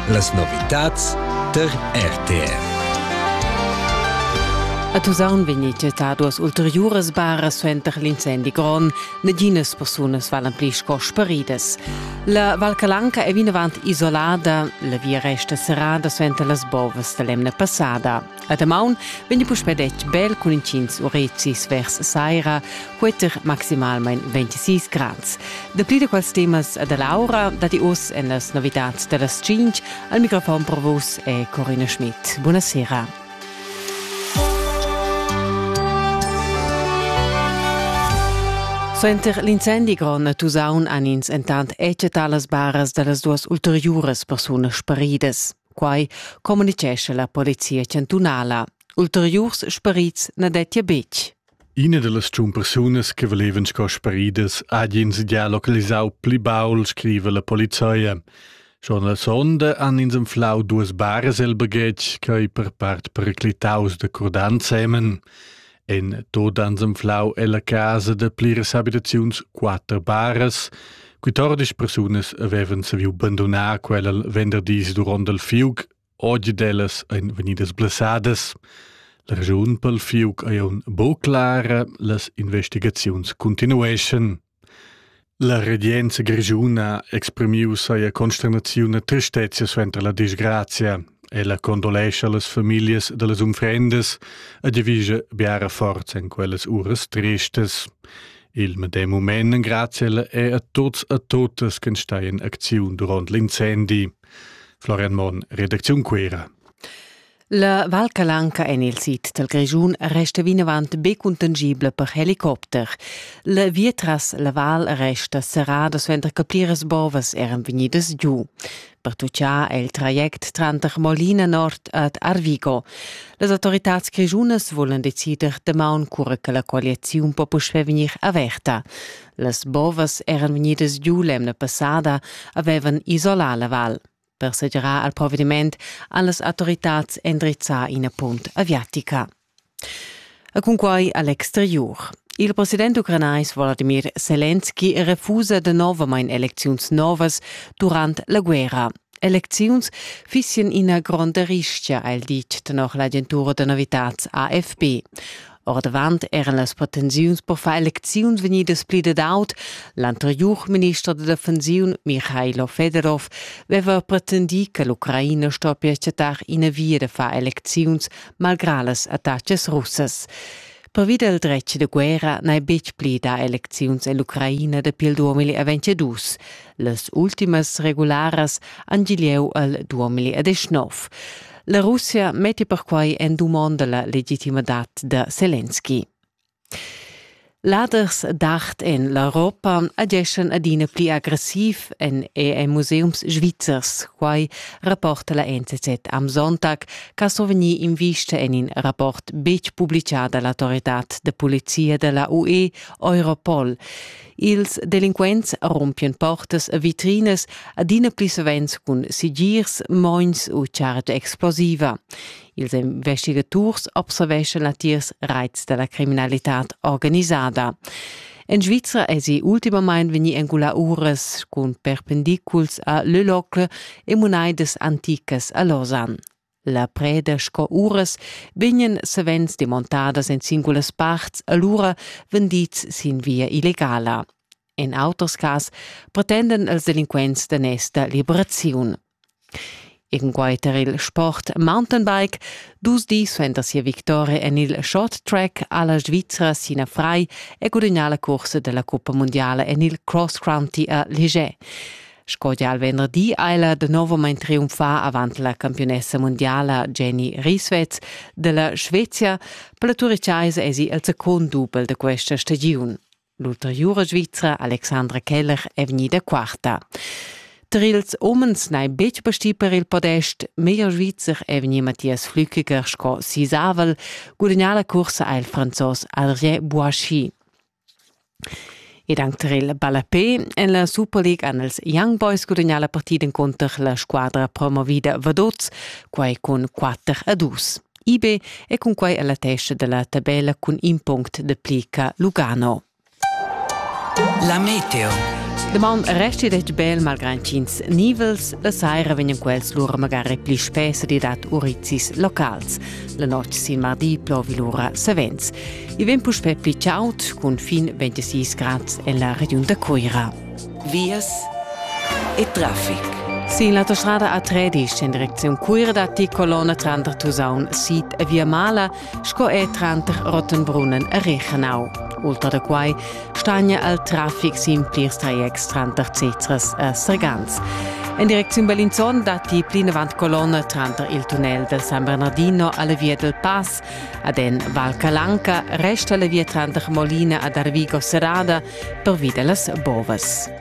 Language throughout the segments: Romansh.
Las novitads tar RTR. A Tusaun vegnì chattà duas ulteriuras baras suenter l'incendi grond. Naginas persunas valan pli sco sparidas. La Val Calanca è vinavant isolada, la via resta serrada suenter las bovas da l'emna passada. A damaun vegni puspè detg bel cun intgins urezis vers saira, queter maximalmain 26 grads. Dapli da quels temas da Laura datti oz en las novitads da las 5. Al microfon per vus è Corina Schmidt. Buona sera. Suenter l'incendi grond a Tusaun han ins entant eccetat las baras da las duas ulteriuras persunas sparidas. Quai communitgescha la polizia chantunala. Ulteriurs sperits na dettia betg. Ina da las tschun persunas che valevan sco speridas ha ins già localisau pli baul, scriva la polizia. Schon la sonda han ins anflau duas baras el baghetg, quei per part periclitaus da curdan semen. En tot ans anflau ella casa da pliras habitaziuns quatter baras, quittordisch persunas avevan saviu bandonar quella venderdis duront il fiug, oggi dellas ein vegnidas blessadas. La ragiun pel fiug ei aun bo clara, las investigaziuns continueschan. La regenza grischuna ha exprimiu sia consternaziun e tristezia suenter la disgrazia. Ella condolescha las famiglias dallas unfrendas e devischa biara forza en quellas uras tristas. Il medem mument engrazia ella è a tuts e tuttas che stai in acziun durant l'incendi. Florian Monn, Redaktion Cuera. La Val Calanca en il sid dal Grischun resta vinavant be cuntangibla per helicopter. La via tras la val resta serrada suenter che pliras bovas eran vegnidas giu. Pertuccà è il traject tranter Molina Nord ed Arvigo. Las autoritads grischunas volan decider damaun cura che la colliaziun po puspè vegnir averta. Las bovas eran vegnidas giu l'emna passada, avevan isolà la val. per segirar al provediment allas autoritads endrizzar ina punt aviatica. E cunquai all'exterior. Il president ucranais Vladimir Selenski refusa novamain elecziuns novas durant la guerra. Elecziuns fissien ina gronda rischia, ha el dit tenor l'agentura da novitats AFP. Ordavant eran las pretensiuns per far elecziuns vegnidas pli dad aut. L'anteriur minister da defensiun Michailo Fedorov aveva pretendì che l'Ucraina stoppia chattar ina via da far elecziuns malgrà las attacas russas. Pervi dal dretg da guerra n'hai betg pli dà elecziuns ell'Ucraina dapi il 2022. Las ultimas regularas han gieu al 2019. La Russia metti perquai en dumonda la legitimadat da Zelensky. Laders d'art en l'Europa ageschan adina pli aggressiv en EM museums svizzers. Quai rapporta la NZZ am Sonntag, che so vegnir invista en in rapport betg publicà dall'autorità de polizia della UE Europol. Ils delinquents rompian portas e vitrinas adina pli savens cun sigirs, mogns u chargia explosiva. Ils investigaturs observeschan latiers raits da la criminalitad organisada. En Svizra èsi ultimamain vegnì engulà uras cun perpendiculs a Lüllocke e munaidas anticas a Lausanne. La preda sco uras vegnan savens demontadas en singulas parts alura vendids sin via illegala. En auters cas pretendan els delinquents d'onesta liberaziun. Inguiter il sport mountainbike, dus dis suenter sia victoria en il short track alla Svizzera Sina Frei e gudagnà la cursa della Coppa Mondiale en il cross county a Ligier. Sco gia il venderdi ha ella de novamain triumfà avant la campiunessa mundiala Jenny Rieswetz della Svezia. Per la Turichaisa esi il secund dubel de questa stagiun. L'ulteriura Svizra Alexandra Keller è vegnida quarta. Tar ils umens n'hai betg pastì per il podest. Meglier Svizzer è vegnì Matthias Flückiger sco sisavel. Gudagnà la cursa ha il Franzos Adrien Boischi. Ed anc tar il ballapè en la Superliga han els Young Boys gudagnà la partida encunter la squadra promovida Vaduz, quai cun 4 a 2. IB è cunquai a la testa da la tabella cun in punct da plica Lugano. La meteo. Daman resti detg bel malgrad ch'ins nivels la saira vegnan quels lura magari pli spess di dad urizis locals. La notg sin mardi plovi lura savens. I vegn puspè pli chaud cun fin 26 grads en la regiun da Cuira. Vias e traffic. Sin l'autostrada A13 en direcziun Cuira datti colonna tranter Tusaun sid e Via Mala sco er tranter Rottenbrunnen e Rechenau. Ultra da quai stagna al traffic sin plirs trajects tranter Cezras e Sergans. En direcziun Bellinzon datti plinavant colonna tranter il tunnel del San Bernardino alla via del Pass ad en Val Calanca resta la via tranter Molina ad Arvigo serrada pervi de las bovas.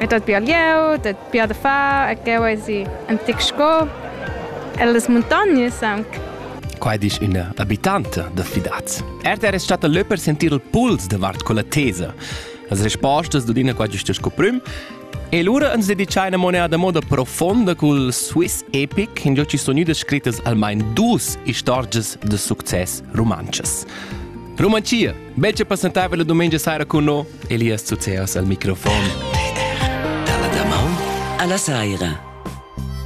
E dat bia glieud, dat bia da far e cheu eisi in tic sco. E las muntognas aunc. Quai disch üna abitanta da Fidaz. RTR es stata lö per sentir il puls davart quella tesa. Las respostas d'Udina qua giusta sco prüm. E lura ans dedichai una moneda moda profonda cul Swiss Epic, in giò ci sono idas scrittas almain dus istorgias de success rumantschas. Rumanchia Melce passentava la domenica sera con noi, Elias Zuzeas al microfon. Dalla damaun alla saira.